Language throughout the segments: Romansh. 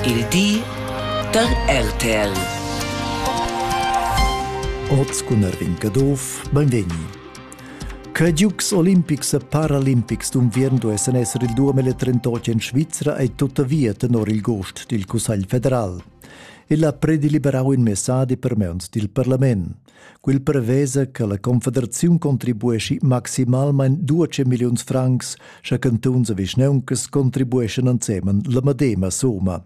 Il di da RTL. Oz cun Rincaduff, benvegni. Che Giugs olimpics e paralimpics d'unviern duessen esser il 2038 in Svizra ei tuttavia tenor il gost dil Cussegl federal. El ha predeliberau in messadi per meuns dil parlament. Quel prevesa che la Confederaziun contribueschi maximalmein 12 milliuns francs, sche cantuns e vischneuncas contribueschan ensemen la medema summa.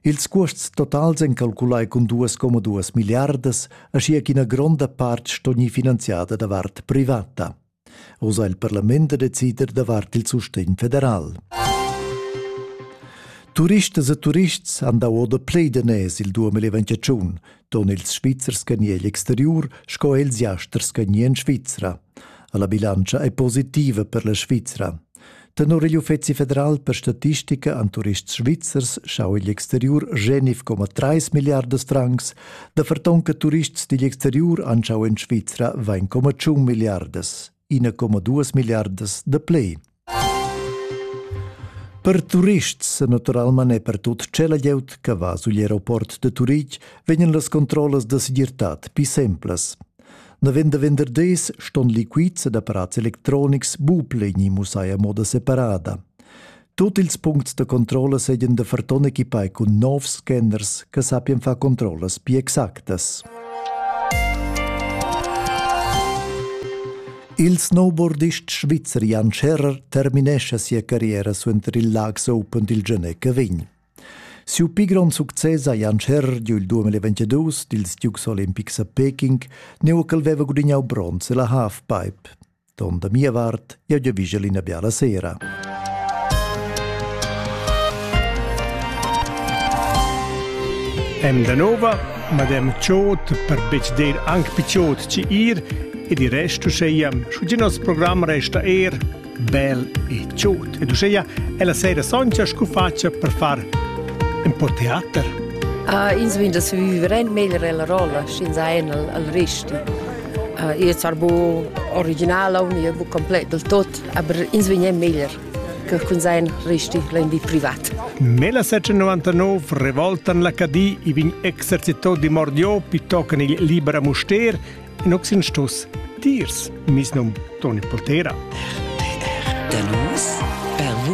Ils cuosts totals ein calculai cun 2,2 milliardas, aschia ch'ina gronda part sto gnir finanziada davart privata. Oz ha il parlament da decider davart il sustegn federal. Turistas e turists han dau oda plei daners il 2021, ton ils Svizzers che ni egl exteriur sco els jasters che ni en Svizra. La bilantscha è positiva per la Svizra. Tenor igl Uffeci federal per statistica an turists svizzers schau igl exteriur genif coma 3 milliardas francs, da fertonca turists digl exteriur anschau en Svizra 1,1 milliardas, 1,2 milliardas de plei. Per turists, naturalman e per tut cela glieud che va sugl aeroport de Turitg, vegnan las controllas de segirtad pi semplas. Navend da venderders ston liquids ed apparats electronics bupleni mussai a moda separada. Tut ils puncts da controlla seigien da ferton equipai cun novs scanners che sappien far controllas più exactas. Il snowboardist svizzer Jan Scherrer terminesce sia carriera suenter il Laax Open dil Genè Cavign. Siu pli grond success ha Jan Scherrer giu il 2022 dils Dukes olimpics a Peking, neu ch'el veva gudignau bronz ella halfpipe. Don da mia vart, jeu giavischel ina biala sera. Em da nova, madem Ciot per betg dir anc picciot ci ir ed il resto seiam, scu ginas program resta er bel e tschut. Ed uschea è la sera soncha scu facia per far un po teater. Uh, ins vin da se viveren meglio la rolla, sch'ins ha en al, al risti. Uh, io sar bu originala un io bu complet del tot, aber ins vin meglio che kun sein risti lendi privat. Nella 1999 revoltan la Cadì i vin exercitò di Mordiò pittoccan il Libera Muster In oxin stus dirs, mis num Toni Poltera. Da nus per